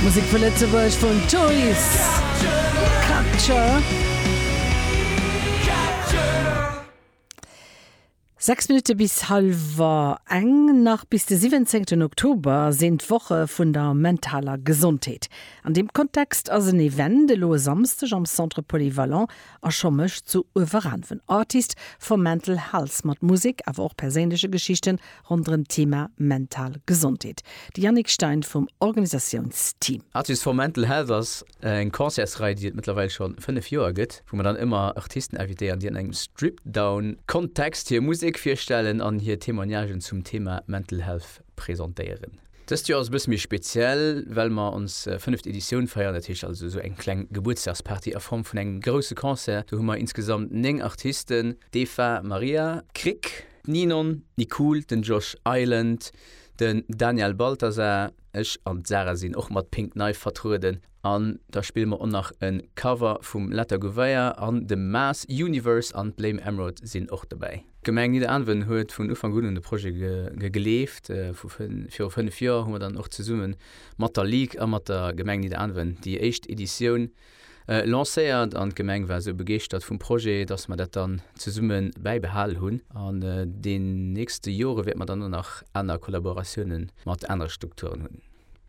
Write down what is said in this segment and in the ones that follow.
Musek vu Lëtzebuerg vun Toys Capture. 6 Minutte bis hallwer eng. Nach bis de 17 Oktober sinn d'Woche vun der mentaler Gesondheet. An deem Kontext ass en Event elo e Samsdeg am Centre Polyvalent A scho mécht sou e Veranven Artist for Mental Health mat Musek, awer och perséinleche Geschichten ronderëm d'Thema mental Gesondheet, de Yannick Stein vum Organisatiounsteam. Artist for Mental Health ass eng Concertsrei, déi et mëttlerweil scho 5 Joer gëtt, wou mer dann ëmmer Artisten invitéieren, déi an engem Stripdown-Kontext hir Musek virstellen an hir Témoignagen zum Thema Mental Health. presentéieren. Dëst Joer ass e bësse méi speziell, well mer ons fënneft Editioun feieren. Dat heescht also esou eng kleng Gebuertsdagsparty a Form vun engem grousse Concert. Do hu mer insgesamt 9 Artisten, d'Eva Maria Krick, d'Ninon Nicool, den Josh Island, den Daniel Balthasar, ech an d'Sarah sinn och mat Pink Knife vertrueden. An da spille mer och nach e Cover vum Letta Gouveia an dem Maas Universe an d'Blame Emerald sinn och dobäi. D'Gemeng Nidderaanwen huet vun Ufank un un de Projet gegleeft. Viru fënnef Joer hu mer dann och zesumme mat der Ligue a mat der Gemeng Nidderaanwen déi éischt Editioun lancéiert an d'Gemeng war esou begeeschtert vum Projet, dass mer dat dann zesumme bäibehal hunn. An den nächste Jore wäerte mer dann och nach aner Kollaboratiounen mat anere Strukturen hunn.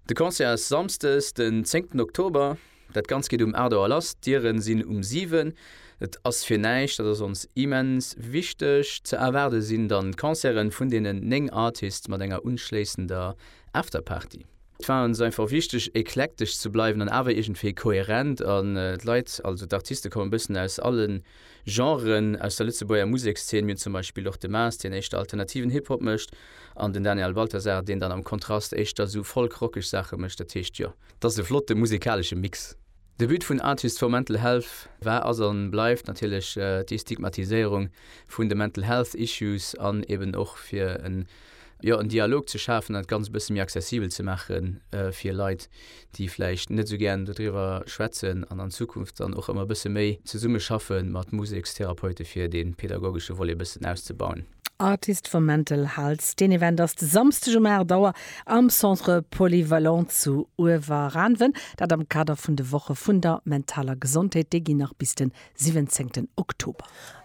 De Concert ass Samsdes den zéngten Oktober. Dat Ganzt geet um 8 Auer lass, d'Dieren sinn um 7. Et ass fir näischt, dat ass ons immens wichteg. Ze erwaarde sinn dann d'Concerten vun deenen 9 Artists mat enger unschléissender Afterparty. Et war ons einfach wichteg eklektesch ze bleiwen an awer iergendwéi koherent an d'Leit, also d'Artiste kommen e bëssen aus allen. Genren aus der Lëtzebuerger Musekszeen. Mir hunn zum Beispill och de Maas, deen éischter alternativen Hip-Hop mécht, an den Daniel Balthasar, deen dann am Kontrast éischter esou folk-rockeg Saache mécht. Dat heescht, jo. Dat ass e flotte musekalesche Mix. De But vun Artists for Mental Health war, ass an bleift natierlech d'Destigmatiséierung vun de Mental Health Issues an eben och fir en jo, en Dialog ze schafen an dat Ganzt e bësse méi accessibel ze maache fir Leit, déi vläicht net esou gären doriwwer schwätzen an an Zukunft dann och ëmmer e bësse méi zesumme schaffe mat Musekstherapeute fir dee pedagogesche Volet e bëssen auszebauen. Artist for Mental Health, deen Event ass de Samsdeg um 8 Auer am Centre Polyvalent zu Uewerranven, dat am Kader vun de Woche vun der mentaler Gesondheet. Déi ginn nach bis de 17 Oktober.